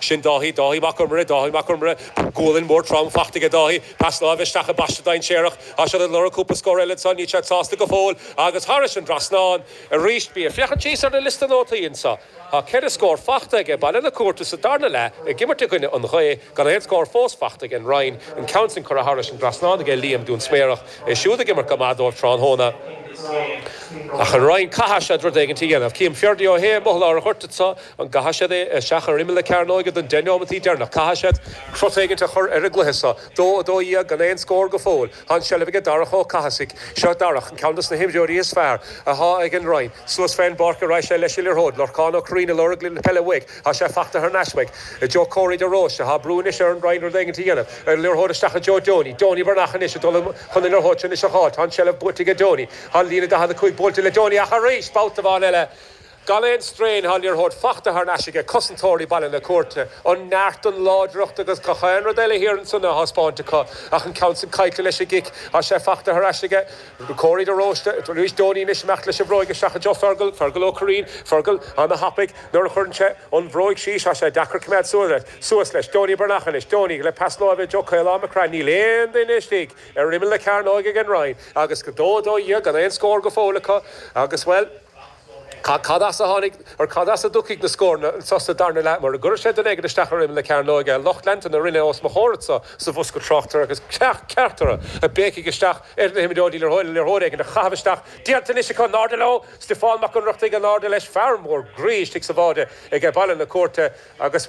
Sin Dáithí, Dáithí Mac Iomaire, Dáithí Mac Iomaire. Gualainn mhór trom fachta aige Dáithí. Pas láimhe isteach i bpaiste dainséarach. Tá siad ag lorg cúpla scór eile ansan, níl siad sásta go fóill. Agus thairis an dtrasnán arís. Bí ag féachaint síos ar an liosta nótaí anseo. Tá ceithre scór fachta aige Baile na Cúirte sa darna leath ag imirt i gcoinne an ghaoth gan aon scór fós fachta aige an Rinn an ceann sin curtha thairis an dtrasnán aige Liam Dúinsméarach. É siúd ag imirt go maith dóibh tráthnóna. Ach an Rinn caithfidh siad rud éigint a dhéanamh. Cím Ferdia Ó hAodha amuigh i lár an ghoirt anseo. An gcaithfidh siad é isteach ar imeall na cearnóige don deich neomataí deireanach? Caithfidh siad cruth éigint a chur ar an gcluiche seo. Dó a dó dhéag gan aon scór go fóill. Tá an seilbh aige Darach Ó Cathasaigh. Seo Darach, ceann dos na himreoirí is fearr athá ag an Rinn. Suas fén bpáirc arís é leis an liathróid. Lorcán Ó Corraoin ag lorg na peile uaidh. Thá sé fachta thar n-ais uaidh. I dtreo Corey de Róiste. Thá brú anois ar an Rinn rud éigin a dhéanamh. An liathróid isteach i dtreo Donie. Donie Breathnach anois ag dul chun na liathróid seo anois a dh'fháil. Tá an seilbh buaite aige Donie. Thá líne a 45 buailte le Donie ach arís! Babhta amháin eile. Gan aon straidhn thá an liathróid fachta thar n-ais aige cosantóirí Baile na Cúirte, an neart, an láidreacht agus gach aon rud eile thiar ansan á thaispeáint acu ach an ceann sin caillte leis an gcic. Thá sé fachta thar ais aige, Corey de Róiste, arís Donie anois ag imeacht leis an bhróig isteach i dtreo Fearghal, Fearghal Ó Cuirrín, Fearghal ana-thapaidh nuair a chuireann sé an bhróig síos, thá sé deacair coimeád suas leis, suas leis, Donie Breathnach anois, Donie le pas láimhe i dtreo Caolán Mac Craith, níl aon duine istigh ar imeall na cearnóige ag an Rinn agus 2-12 gan aon scór go fóill acu agus bhuel, Cad as a tháinig, or cad as a dtiocfaidh na scóranna anseo sa darna leath? Mura gcuirfidh siad duine éigin isteach ar imeall na cearnóige, lucht leanta na Rinne os mo chomhair anseo sa bhosca tráchtaire agus ceacht ceart orthu, ag béicigh isteach ar na himreoirí le liathróid éigin a chaitheamh isteach, déanta anois acu! In airde leo! Stiofán Mac Ionnrachtaigh in airde leis, fear mór groí istigh sa bháide ag Baile na Cúirte agus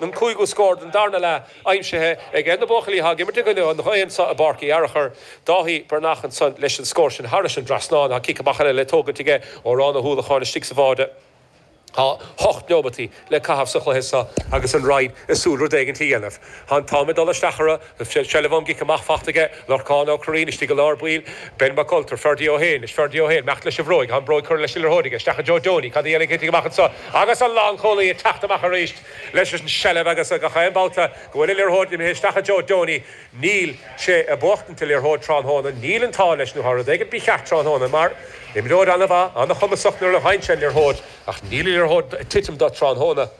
an cúigiú scór den darna leath aimsithe ag na buachaillí athá ag imirt i gcoinne an ghaoth anso i bPáirc Uí Fhearchair. Dáithí Breathnach ansan leis an scór sin thairis an dtrasnán thá cic amach eile le tógaint aige Odhrán Ó hUallacháin istigh sa bháide. Tá hocht neomataí le caitheamh sa chluiche seo agus an Rinn ag súil rud éigint a dhéanamh. Tá an t-am ag dul isteach orthu. Seilbh ón gcic amach fachta aige, Lorcán Ó Corraoin istigh i lár baill, Ben Mac Ultra, Ferdia Ó hAodha anois, Ferdia Ó hAodha ag imeacht leis an bhróig, tá an bróig curtha leis an liathróid aige, isteach i dtreo Donie, cad a dhéanfaidh Céitinn amach anseo agus an lánchúlaí ag teacht amach arís leis an seilbh agus gach aon babhta go bhfuil an liathróid imithe isteach i dtreo Donie níl sé ag buachtaint an liathróid tráthnóna, níl an t-ádh leis nó thá rud éigin mícheart tráthnóna mar imreoir ana-mhaith, an-chumasach nuair a fhaigheann sé an liathróid ach níl an liathróid ag titim dó tráthnóna.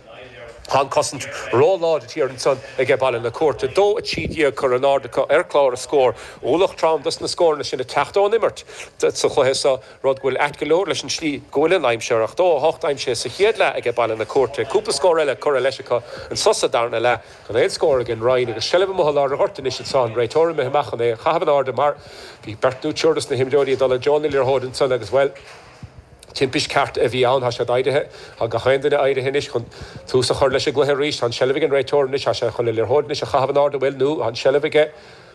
Tá an cosaint ró-láidir thiar ansan aige Baile na Cúirte. 2, 13 curtha in airde acu ar chlár na scór. Ualach trom dos na scóranna sin ag teacht ón imirt sa chluiche seo, rud go bhfuil ait go leor leis an tslí go bhfuil an aimsir. 2, 8 aimsithe sa chéad leath aige Baile na Cúirte. Cúpla scór eile curtha leis acu anso sa darna leath. Gan aon scór aige an Rinn agus seilbh amuigh i lár an ghoirt anois anso. An réiteoir imithe amach chun é a chaitheamh in airde mar bhí beirt nó triúr dos na himreoirí ag dul i dtreo na liathróide ansan agus, bhuel, Timpist cheart a bhí ann, tá siad éirithe. Tá gach aon duine éirithe anois chun tús a chur leis an gcluiche arís. Tá an tseilbh ag an réiteoir anois. Tá sé chun an liathróid anois a chaitheamh in ard a bhfuil, nó tá an tseilbh aige.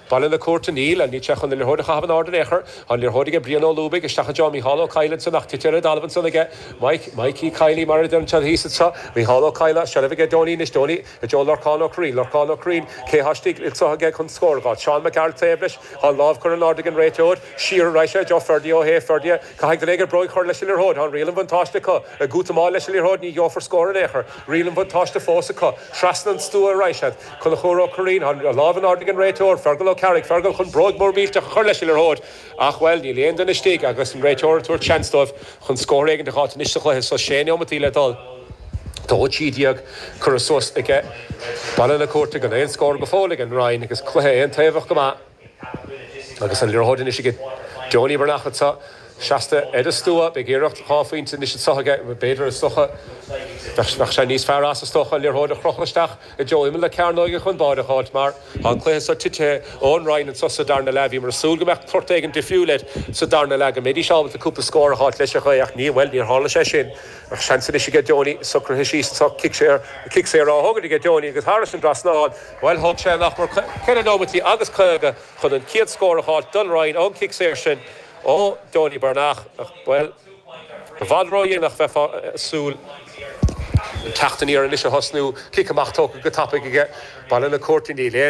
Baile na Cúirte. Níl. Níl sé chun an liathróid a chaitheamh in ard in aon chor. Tá an liathróid aige Brian Ó Lúbaigh. Isteach anso Mícheál Ó Cadhla anso, ach titithe ar an dtalamh ansan aige. Mike, Mikey, Kiely mar a deir an seod thíos anso. Mícheál Ó Cadhla, seilbh aige Donie anois, Donie, go dtí Lorcán Ó Curraoin, Lorcán Ó Curraoin, cé thá istigh anso aige chun scór a dh'fháil? Seán Mac Gearailt, taobh leis. Tá an lámh curtha in ard ag an réiteoir. Siar a raghaidh sé, go Ferdia Ó hEochaidh, Ferdia, Caithfidh duine éigin bróig a chur leis an liathróid. Tá riail an bhuntáiste acu. Ag útamáil leis an liathróid ní gheofar scór in aon chor. Riail an bhuntáiste fós acu. Trasna an stua a raghaidh siad. Conchúr Ó Cuirrín, Tá an lámh in airde ag an réiteoir, Fearghal Ó Ceallaigh, Fearghal chun bróig mhór mhillteach a chur leis an liathróid ach, bhuel, níl aon duine istigh agus an réiteoir ag tabhairt seans dóibh chun scór éigin a dh'fháilt anois sa chluiche so is sé nóimintí le dul. Dó trí déag curtha suas aige. Baile na Cúirte, gan aon scór go fóill ag an Rinn agus cluiche aontaobhach go maith. Agus an liathróid anois aige Donie Breathnach, tá sé seasta ar an stua, beidh iarracht dhá phointe anois socair aige, b'fhéidir. Is dócha bheadh sé níos fearr as, is dócha, an liathróid a chrochadh isteach i dtreo imeall na cearnóige chun báire a fháilt mar tá an cluiche so titithe ón Rinn anso sa darna leath. Bhíomar ag súil go mbeadh port éigin difriúil air sa darna leath, go mbeidís ábalta cúpla scór a fháilt leis ach ní, bhuel, níor tharla sé sin. Ach seans anois aige Donie, socraithe síos anso, cic saor á thógaint aige Donie agus thairis an dtrasnán, Bhuel, thóg sé nach mór ceithre nóimintí agus caoga chun an chéad scór a fháilt don Rinn ón chic saor sin ó Donie Breathnach, bhuel, i bhfad ródhéanach bheifeá ag súil teacht aniar anois a thosnú. Cic amach tógtha go tapaidh aige, Baile na Cúirte, níl aon.